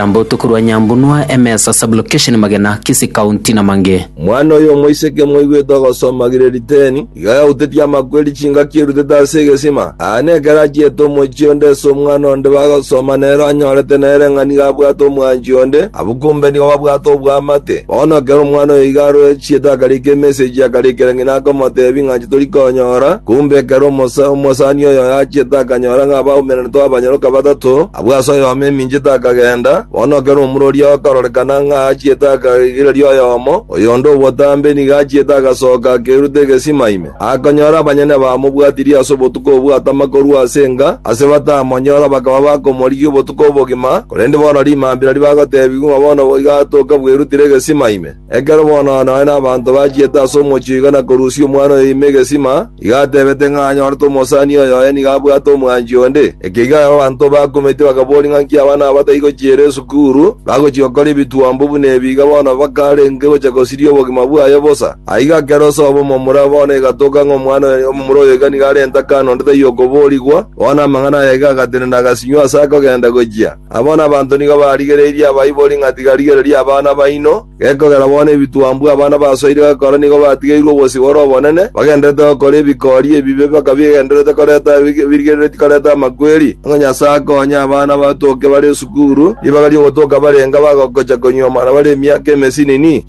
Nambotu korwa Nyambunua, Emesa Sub-location Magena, Kisii County na mangĩ. Mwana oyo omoiseke moigwete ogosoma gire riteni, iga yautetie amakweri chingaki erutete ase egesima. Aane ekero achiete omochie onde ase omwana onde bagosoma nere onyorete nere ng'a nigo abwate omwanchi onde, abwo kombe nigo babwate oboamate. Bono ekero omwana oyo iga aroechiete akarika emessage akarikera ng'ina akomoteebia ng'a chitori konyora, kombe ekero omosa, omosani oyo oye achiete akanyora ng'a abaumeranete abanyoroka batato, Abwo ase oyomo eminchete akagenda, bono ekero omura oria okarorekana ng'a achiete akarigereria oyomo, oyonde o botambe nigo achiete agasoka akerute egesima ime, akonyora abanyene bamobwatirie ase obotuko obwo atama korwa ase enga, ase batamonyora bakaba bakomorigia obotuko obogima, korende bono rimambia nario bagotebigwa ng'a bono boigo atoka bwerutire egesima ime. Ekero bono nore nabanto bachiete ase omochie iga na korusia omwana oyo ime egesima, iga atebete ng'a anyorete omosani oyo oye nigo abwate omwanchi onde. Ekiagera ekero abanto bakumeitie bakaboria ng'a inki abana aba bataichi gochiera esukuru, bagochia gokora ebituombe buna ebi, iga bono bakarenge gochia gosiria obogima bwaye bosa. Aiga ekero esoba omomura bono egatoka ng'a omwana oyo omomura oyo iga nigo arente akana onde taiyo okoboorigwa, bono amang'ana aya iga agatenena agasinywa ase akogenda gochia. Abo nabanto nigo barigereirie abaibori ng'a tigarigereria abana baino, gekogera bono ebituambwa abana basoire gokora nigo batigeirwe obosio bore obonene, bagendererete gokora ebikori ebibe mpaka bigendererete koreta birigereretie koreta amakweri. Onye Nyasae akoonye abana batoke bare esukuru, ribaga ri'ogotoka barenge bagocha konyuoma na bare emiaka emesinini?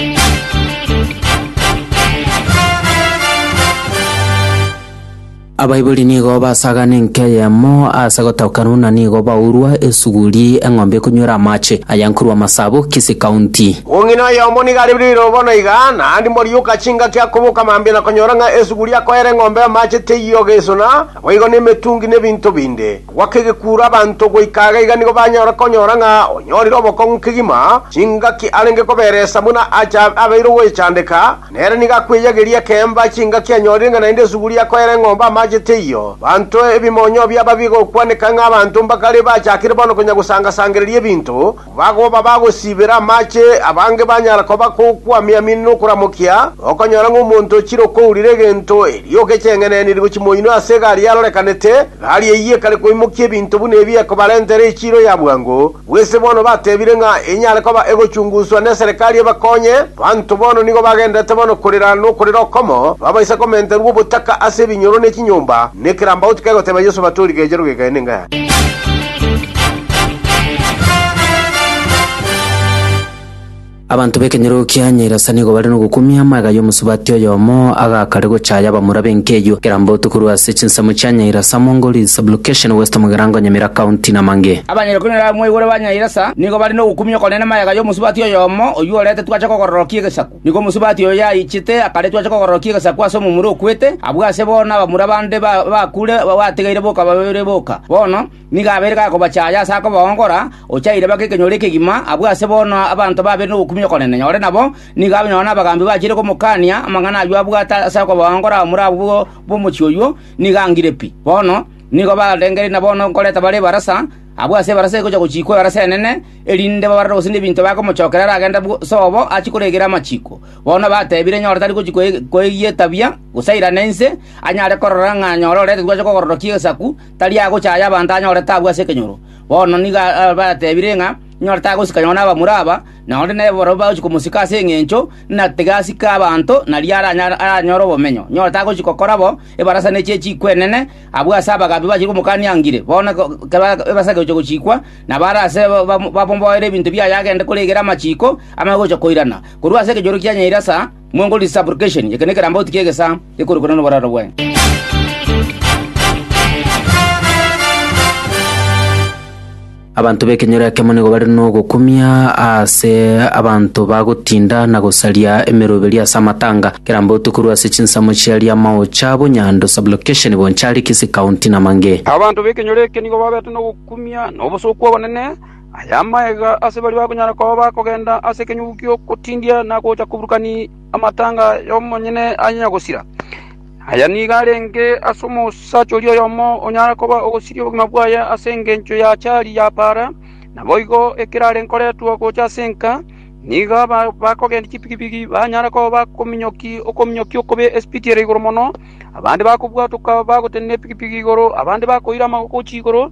Abaibori nigo basagana enka eyemo ase gotaũkanwa buna nigo baurwa esuguri eng'ombe ekonywera amache, aya nkorwa amasabo kisi kaunti. Omong'ina oyomo nigo are riroiro bono iga, naende morioka chingaki akoboka mambia na konyora ng'a esuguri akoera eng'ombe amache teiyo gesona, naboigo nemetungi nebinto binde. Agwa kegekuro abanto goika iga iga nigo banyara konyora ng'a onyorire obokong'u kegima, chingaki arenge koberesa buna acha abeire ogwechandeka, Nere nigo akweiyageria ekeemba chingaki anyorire ng'a naende esuguri akoera eng'ombe amaache teiyo. Abanto ebimonyo biabo bigokwaneka ng'a abanto mbakare bachakire bono konya gosanga-sangereria ebinto, bagoba bagosiibera amaache, abange banyara koba kokwamia-miani nokoramokia, okonyora ng'a omonto ochire okourira egento erio ogecheng'eneniri gochia moino ase egari yarorekanete, gari eyio ekare koimokia ebinto buna ebi ekobarentera echiiro ya bwango, Bw'ense bono batebire ng'a enyare koba egochunguswa neserekari ebakonye, banto bono nigo bagenderete bono korera nokorera okomo, babaisa komenterwa obotaka ase ebinyoro ne chinyomba, ne kerambauti kegoteba Yeso bate origechero gegae nenga yane. Abanto b'ekenyoro kia Nyairasa nigo bare nogokumia amagega y'omosubati oyomo agakare gochaaya abamura b'enkeyio Kerambotu korwa ase chinsemo chia Nyairasa, Mongoli, Sublocation West Mugirango, Nyamira County, na mang'e. Abanyene kumi na babere mwaigure ba Nyairasa nigo bare nogokumia okonene amagega y'omosubati oyomo oyio orete twache kogororokia egesaku. Nigo omosubati oyo yaichete akare twache kogororokia egesaku ase omomura okwete, abwo ase bono abamura bande baakure bategeire boka babeire boka. Bono, Nigo abeire gakobachaya ase akobaongora, ochaire bake ekenyoro ekegima, abwo ase bono abanto babeire nobokumia okonene nyore nabo, nigo abe nonya nabagambi bachiire komokania amang'ana ayio abwate ase okobaongora omura abwo b'omochie oyio, nigo angire pi. Bono nigo barengereiri na bono nkoreta bare ebarasa, abwo ase ebarasa egocha gochiikwa ebarasa enene, erinde babarore gose nebinto bakomochokera aragende bwose obo achie koregera amachiiko. Bono batebire nyore tari gochia koegiyetabia, gose airane inse, anyare korora ng'a nyore oretetwe ache kogororokia egesaku, tari agochaya abanto anyore taabu ase ekenyoro. Bono nigo abatebire ng'a nyore tagosika nyoo n'abamura aba, na onde nere barabwo bagochia komosika ase engencho ng'a tiga asike abanto nario aranyore obomenyo. Nyore tagochia gokora bo ebarasa ne chie chikwa enene abwo ase abagabi bachire komokania ngire. Bono ekero ebarasa egochia gochikwa, nabo are ase bamomboere ebinto biaye agende koregera amachiko amaya gocha koirana. Korwa ase ekenyoro kianyeire ase. Mwongorue supplication, eke nekerambauti ki'egesaa gekorokwana noboraro bwaye. Abanto b'ekenyoro ekemo nigo bare nogokumia ase abanto bagotinda na gosaria emeroberi ase amatanga, kerambauti korwa ase chinsemo chia Riamaocha, Bonyando, Sublocation, Bonchari, Kisii County, na mang'e. Abanto b'ekenyoro eke nigo babete nogokumia na obosooku obonene. Aya amagega ase baria bakonyara koba bakogenda ase ekenyugu gi'ogotindia na gocha koburukania amatanga y'omonyene anyenya gosira. Aya nigo arenge ase omosacha oria oyomo onyare koba ogosiria obogima bwaye ase engencho ya chari ya paara. Naboigo ekero are nkoretwa gocha ase enka, nigo abakogendia chipikipiki banyare koba bakominyokia okominyokia okobe esipiti ere igoro mono, abande bakobwatoka bagotenena epikipiki igoro, abande bakoira amagoko gochia igoro,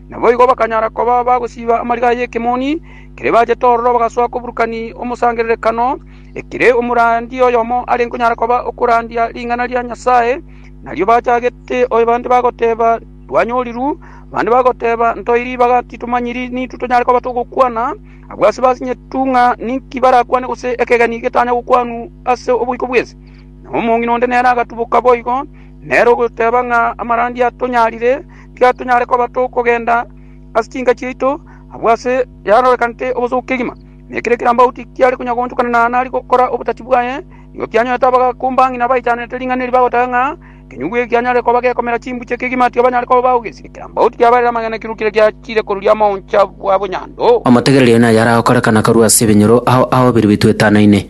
Naboigo bakanyara koba bagosiba amariga y'ekemoni kere bachete ororo bagasoa koburukani omosangererekano, ekere omorandi oyomo are nkonyara koba okorandia ring'ana ria Nyasae. Nario bachagete oyo bande bagoteba, Twanyoriru, bande bagoteba, Ntoeire ribaga, titomanyiri nintwe tonyare koba togokwana. Abwo ase basinyetu ng'a ninki barakwane gose ekegeni getanya gokwanwa ase oboiko bw'ense. Na omong'ina onde nere agatuboka boigo, nere ogoteba ng'a amarandi atonyarire. Tiga tonyare koba tokogenda ase chinka chiaito abwo ase yarorekanete obosooku kegima, na ekero ekerambauti kiare konya goonchokana na nari gokora obotachi bwaye, nigo kianyorete abagakumba ng'ina baichanete ring'ana eri bagotaga ng'a ekenyugu eke kianyare koba gekomera chimbuche kegima tiga banyare koba baogesi. Ekerambauti kiabarire amang'ana ekero kire giachire koruria amaoncha bwa bonyando. Omotegereria oyo naye aragokorekana korwa ase ebinyoro ao aobiru bitwetanaine.